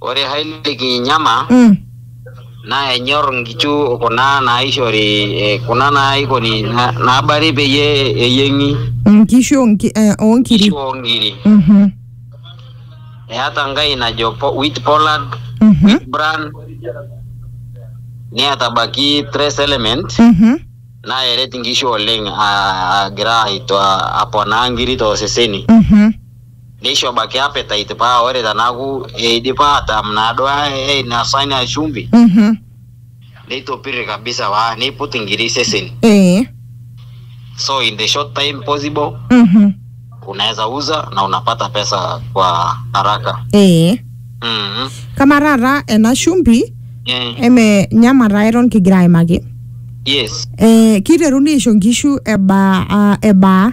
Ore Haile Kinyama Mm. naa enyor nkishu kuna naaishori eh, kuna naaikoni na- naabari peyie eyieng'i Nkishu onki- eh, oonkiri. nkishu oonkiri. Mhm. Eata Nkai najo po, wheat pollard, Mhm. wheat bran, neata abaki trace element Mhm. naa eret nkishu oleng aa- agira aito- aponaa nkiri tooseseni. Mhm. Neisho baiki appetite paa ore tenaaku eidipa atam naaduo ainosa ina shumbi Mhm. neitopirri kabisa paa neiput inkiri iseseni. Ee. So in the short time possible Mhm. unaeza uza na unapata pesa kwa haraka. Ee. Mhm. Kamaa taata ena shumbi Eh, eme nyama taa eton kigira aimaki. Yes. Eh, kiteruni aisho nkishu ebaa ah, ebaa?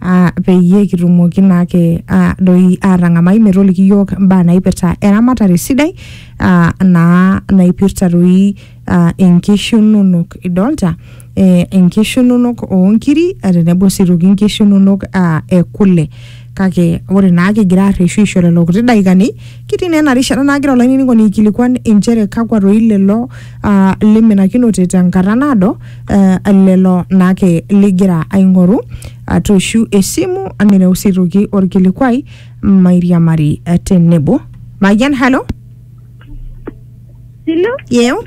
ah, peyie kitumoki naake ah, doi atang'amai metoliki yiok imbaa naipirta eramatare sidai ah, naa naipirta doi ah, inkishu inonok idolta eh, inkishu inonok oonkiri eh, tenebo sii toki inkishu inonok ah, ekule kake ore naa kigira arreshu aisho lelo kuti daikani Kitii naa ena rishata nagira olainining'oni aikilikuan inchere kakwa toi lelo ah, liminakinote tenkata naado eh, lelo naake ligira aing'oru atooshu esimu nireu sii toki orkilikuai mairiamari eh, tenebo. Mayian, hello? Silo, Yeo?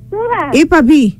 supa, Ipapi?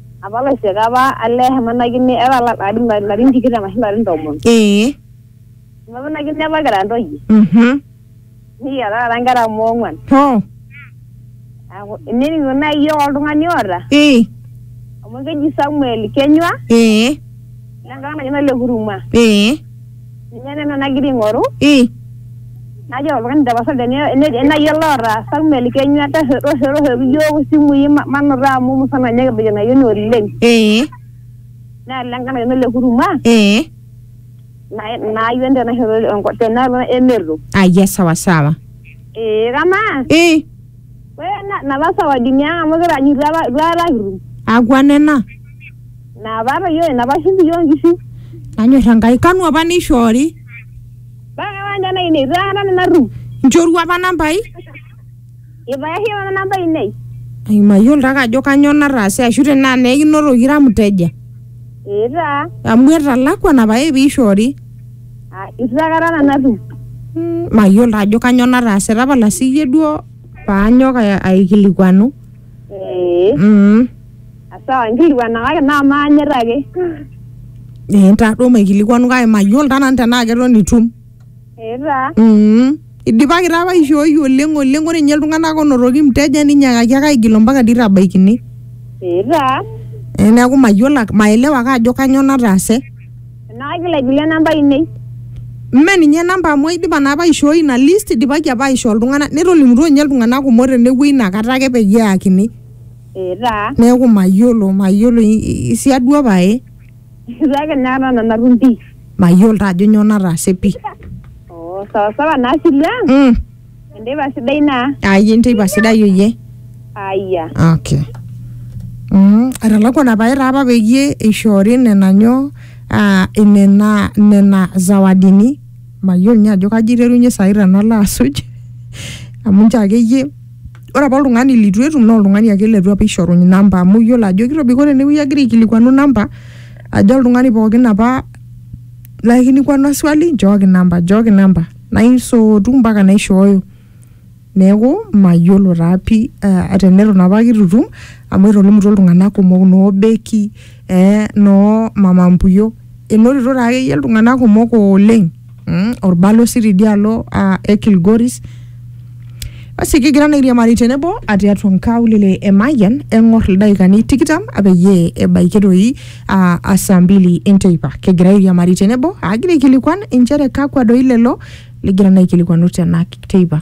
Apa laisiak apa ale emanakini era larin larin tikitam ashu larin tomon. Ee. Emanakini apa kira ntoyie. Mhm. Nikiata taata nkera amu ong'uan. Hoo. Neaku ininingu nai iyiok oltung'ani oota. Ee. Amu keji Samuel Kenyua. Ee. Lengang naji Nalekuruma. Ee. Ninye nena nagira aing'oru. Ii. Najo oltung'ani tapasali tene nai ele otaasa Samuel Kenya torrerroshoki iyiook isimui manoto amu musana ninye kibaiki ena ayioni oleng. Ee. Naa ele nkae nayioni le Huruma. Ee. Ina ayioni tena shoto tenaalo emerro. Ayia sawa sawa. Ee kamaa. Ii. Ore napa sawadini ang amu kitaanyutua apa itu aikata kitum. Akwa nena? Naa paata iyiook ina pashum iyiook nkishu. Nanyor Enkai. Kanu apa neishoori? Mpaka kewon nena ainei eitu aikata nanu atum. Nchorua apa nambai? Eitu aisho nanu namba ainei. Ai mayiolo taake ajo kanyoo nataase ashu tenaa naa ekinotoki ira mteja. Ee taa. Amu etalakuana pae pee eishoori. Aa eitu aikata nanu atum. Mayiolo taa ajo kanyoo nataase. Tapala sii iyie duo paanyok aikilikuanu. Ee. Sawa, nkilikuana kake naa maanyit ake. Eh, ntaa duo maikilikuanu kake mayiolo taa nanu tenaa keton itum. Ee taa. Mm. Idipaki taa apa aishooi oleng oleng ore ninye iltung'anak onotoki mteja ninyakaki ake aigil ompaka dii tabaikini. Ee taa. Eh, neeku mayiolo ake- maelewa ake ajo kanyoo nataase. Enaa kaigil aigilie namba ainei. Mme ninye namba amu aidipa naa apa aishooi ina list idipaki apa aishoo iltung'anak netolimutuo ninye iltung'anak kumok tenewuei inakata ake peyie eyakini. etaa neeku mayiolo mayiolo i- i- isiadua pae kake naa nanu natum pi mayiolo taa ajo nyoo nataase pi oo sawasawa naa silu ang mm. enteipa sidai naa ayie enteipa sidai oyie aya okay mm. etalakuana pae taa apa peyie eishoori nena nyoo ah, nena nena zawadini mayiolo ninye ajo kaji iterunye sai tenalo asuj amu nchoo akeyie ore apa oltung'ani litu etum naa oltung'ani ake letu apa eishoruny namba amu iyiolo ajo kitobiko ore enewueji agira aikilikuanu namba ajo oltung'ani pookin apa laikilikwanua swali nchooki namba nchooki namba naisootu mpaka naishooyo neeku mayiolo taa pii uh, teneton apa kitu itum amu etolimutuo iltung'anak kumok noo beki eh, noo mama mpuyo enotito taa akeyie iltung'anak kumok oleng. mm, orbalosi tidialo uh, e Kilgoris basi kigira naa airiamari tenebo atiatua nkaulele e Mayian eng'or ildaikani tikitam peyie ebaiki doi uh, asaa mbili enteipa kigira airiamari tenebo agira aikilikuan inchere kakwa doi lelo ligira naa aikilikuanu tena teipa